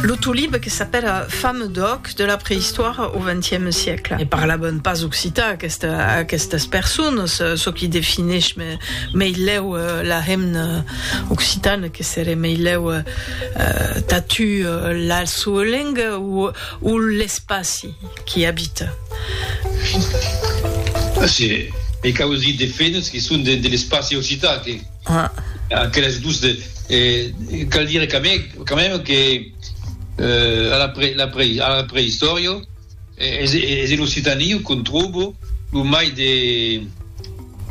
Lo tolib que s'apèla fame d'òc de la preïstòria au XXe siècle. Ne parlavan pas occitan aquestas personas, çò qui defineish meilèu la hemna occitana que seré meilèu tatu la soa lenga o l'espaci qui abita. Ací, me cau es dir de fenas qui son de l'espaci occitan que. Aqueles dos de cal dire quand même que a la pre la pre a la preistòria es es en Occitanie qu'on tròbo lo mai de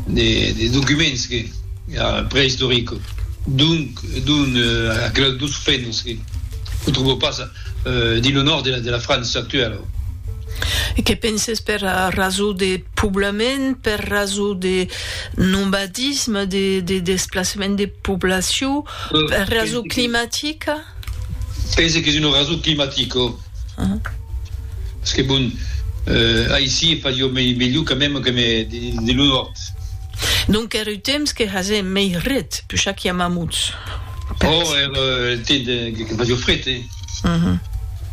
de de documents que preistorico donc donc aqueles dos fènos que lo tròbo pas dins lo nòrd de la França actuèla. E que penses per rasó de poblament, per rasó de Nomadisme, de desplacement de poblacion per rason climatica? Pense qu'es una rason climatica. Parce que bon, aicí fa jo melhor quand même que de lo nòrd. Donc er eth temps que hase mei red, pus cha qu'i a mamuts. Ò, er temps que fa jo fred, eh?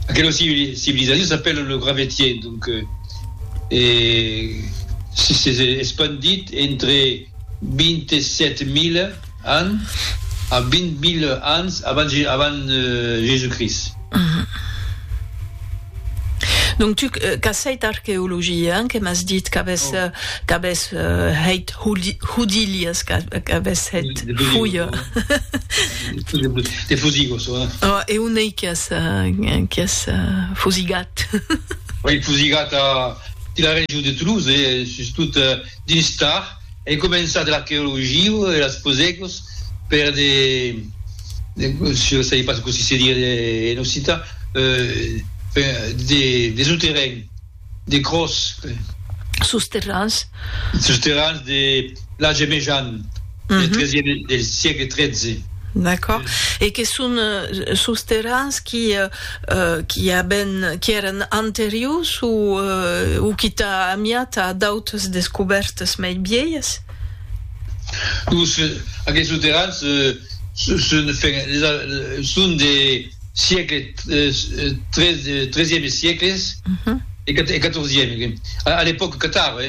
Aquela civilizacion s'apèla lo Gravetien, donc s'es espandit entre 27.000 ans a 20.000 ans avant Jésus-Christ. Donc tu qu'as hèit arqueologia, que m'as dit qu'avès hèit Houdilias, qu'avès hèit Houyas. Te fosigo çò. Oh, e on ei que as, que as fosigat? Ei fosigat a la region de Toulouse, sustot dins Tard. Ei començat l'arqueologia e las fosegos per de, je sais pas cossí se diria en occitan, des souterrains. de Cròs, crei. Sos terrans. Sos terrans de Lage Mejan, del tresièm, del siegle tretze. D'acòrd. E que son sos terrans qui, qui aben, qui èran anteriors o, o qui tà amiat a d'autres descobèrtas mei vielhas? Los, aquesos terrans son, enfin, son de. siecle, tresieme siècles e quatorzieme, a l'epòca catara,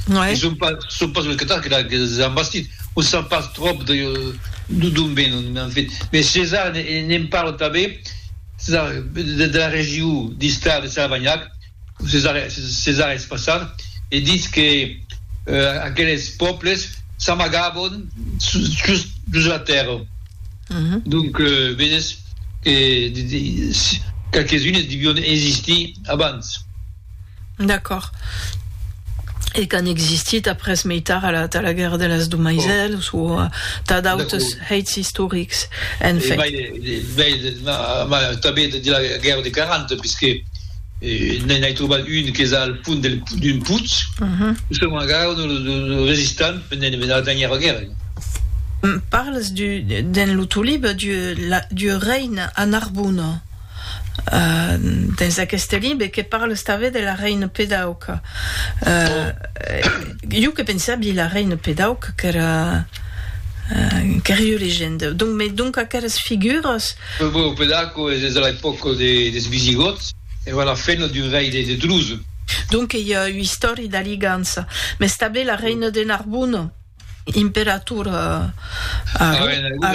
que son pas los catars que les an bastit, on sap pas tròp d'on venon, en fait, mes Cesar ne'n parla tanben de la region d'Istar de Salvanhac, Cesar Espassard e ditz que aqueles pòbles s'amagavon sus la tèrra. Donc vedes que qualques unes devion existir abans. D'acòrd. E qu'an existit après mei tard a la guèrra de las Domaisèls o tà d'autres hèits istorics. Tanben de la guèrra de 40, puisque. N'en ai trobat un qu'es al fond d'un putz, lo son encara lo resistam per n'en venar tanhir la guèrga. Parles du, dens lo tau libre, du reine a Narbona. Dens aqueste libre que parles tanben de la reine Pedauca. Jo que pensavi la reine Pedauca qu'èra, qu'èra ua legenda. Donc, mès donc aqueras figuras. Lo Burgo Pedaco es de l'epòca des Visigòts, èra la feina d'un rei de Druso. Donc ei ua istòria d'aligança. Mès tanben la reina de Narbon, imperator a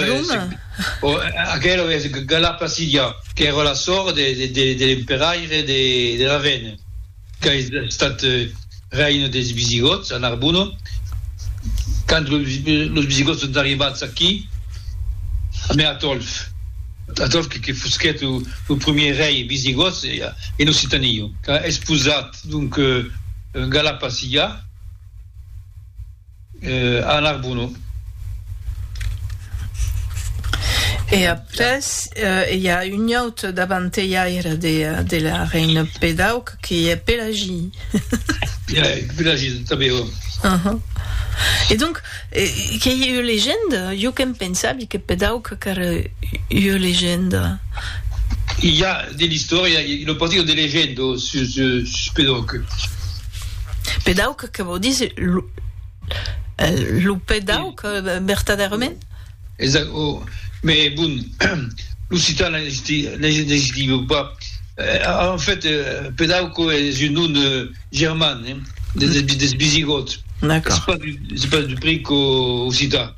Roma. Aquela es Gala Placidia, qu'èra la sòr de l'emperaire de Ravenna. qu'es estat reina des Visigòts a Narbona, quand los Visigòts son arribats aquí, mai Atòlf, Atòlf que fusquèt lo primièr rei visigòt en Occitania, qu'a esposat donc Galapaciga. A Narbonneau. E après i a un autre davantelhaire de la Reine Pédauque qui est Pélagie. Pélagie, tanben, oui. E donc, qu'ei ua legenda? Jo que'm pensavi que Pédauque qu'era ua legenda. I a de l'istòria e una partida de legenda sus Pédauque. Pédauque Que vò díser lo pè d'auc, vertadèrament? Exact, o, mès bon, l'occitan n'existiva pas. En fait, pè d'auc es un nom german, des visigòts, es pas du pric occitan.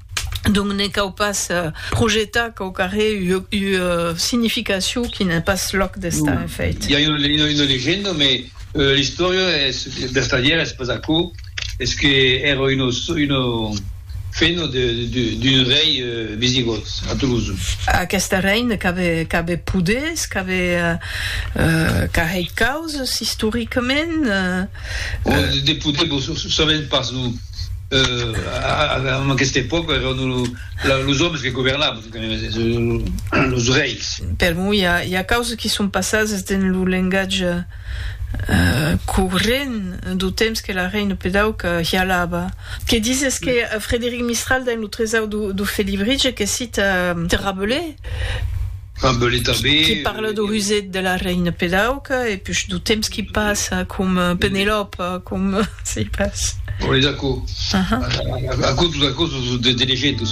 Donc ne cau pas projetar quau qu'arré ua significacion qui n'ai pas lòc d'estar, en fèit. I a una legenda, mai l'istòria es vertadièra, es pas aquò, es que èra una fena d'un rei visigòt a Toulouse. Aqueste rei ne qu'avè poders, qu'avè carrei causas, istoricament. De poders, vos sabèm pas, non. en aquesta epòca èran los òmes que governavan, los reis. Per moi, i a causas que son passadas dins lo lengatge corrent dau temps que la reina pedauca hialava. Que dizes que Frederic Mistral dins lo Tresau du Felibritge que cita de Rabelais, Qui parle de Rusette de la Reine Pedauca e push du temps qui passe com Penelope com si pas. Bon es aquò aquò tot aquò de de legenda.